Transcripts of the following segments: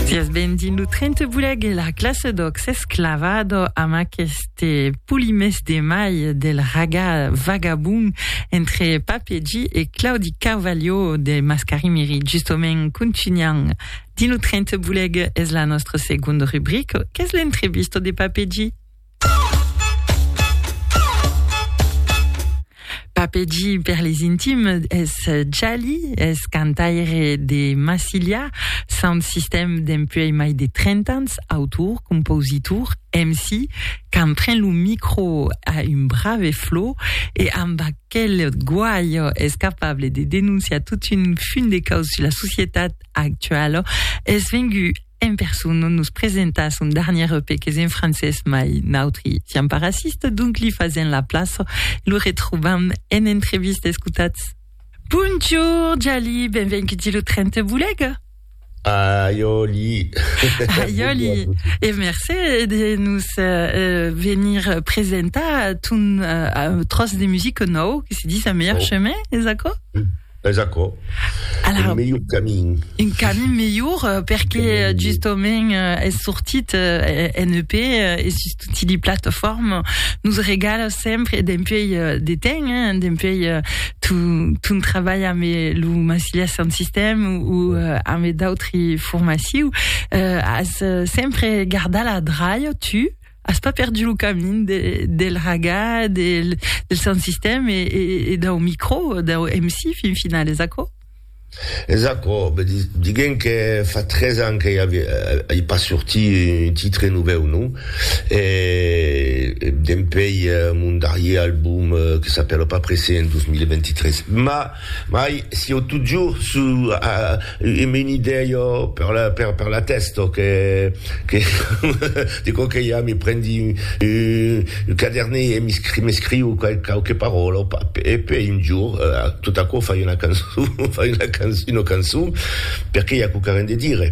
Sias benvin lo 30 buleg e la classe d'oc s'esclavado amb aqueste polimès de mai del raga vagabond entre Pape G e Claudi Carvalho de Mascarimiri. Justament, continuant dins lo 30 buleg es la nostra segond rubrica qu'es l'entrevista de Pape G. Papegi per les intimes es Jali, es cantaire de Massilia, sound system dempuèi mai de 30 ans, autor, compositor, MC, quand pren lo micro a un brave flot e amb aquel guaio es capable de denonciar tot un funt de caus sus la societat actuala, es vengut En persona nos presenta son darnièr EP qu'es en francés mai nautri siam pas racistes donc li fasèm la plaça e lo retrobam en entrevista escotatz. Bonjour Jali, benvenguts lo 30 Bolega. Aiòli. Aiòli. E mercé de nos venir presentar ton tròç de musica nòu que se dis A Meilleur Chemin, es aquò? Es aquò, Alors, un melhor camin. Un camin melhor, euh, perque euh, justament euh, es sortit euh, en EP euh, e sus tutti li plataformes nos regala sempre dempuèi euh, de temps, hein, dempuèi euh, ton, ton trabalh amb eh, lo Massilia Sound System ou euh, amb d'autri formaciu, euh, as euh, sempre gardat la draia, tu, as pas perdu lo camin de, del raga, del, del sound system e, e, e dau micro, dau MC fin final, es aquò? Es aquò, diguem que fa tres ans que i a pas sorti un titre novèu, non? E dempèi mon darrier album que s'apèla pas pressé en 2023. Mas. Mai sieu totjorn su un menidèio per la tèsta que dico que ja me prendi un quadernèu e m'escriu quauque paròla e puèi un jorn tot aquò fai una cançon perque i a quauquarren de dire.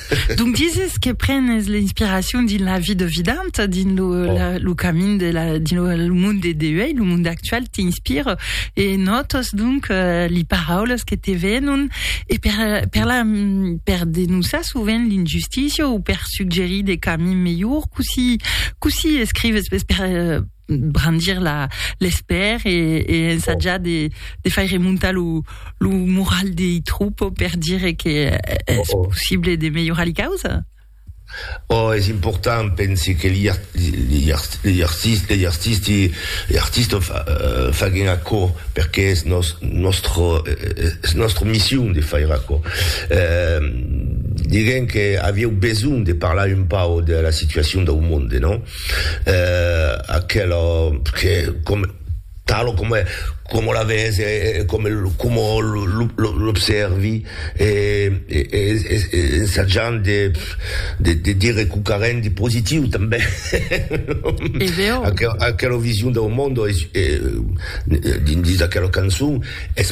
Donc dises que prenes l'inspiracion dins la vie de Vidant, dins lo, oh. la, lo camin de la, dins lo, le monde de Deuei, lo monde actual t'inspire e notos donc euh, li paraules que te venon e per, per, la, per denonçar sovent l'injustícia ou per suggerir des camins melhors, coussi, coussi escrives per, per brandir la l'espèr e e ensajar de de faire montar lo lo moral dei troupes per dire que es possible de melhorar li causa? Oh, es important, pensi que li art li art li artist li artisti li artista fa faguen aquò perque es nos nòstra es nòstra mission de faire aquò. Diguem que avieu besonh de parlar un pauc de la situacion dau monde, non? eh, aquela que com talo com como la ves e, e com como l'observi e, e, e, e, e ensajant de, de, de dire qualque rendi positiu també e veo aquela, aquela vision del mondo es, e, dins aquela cançon es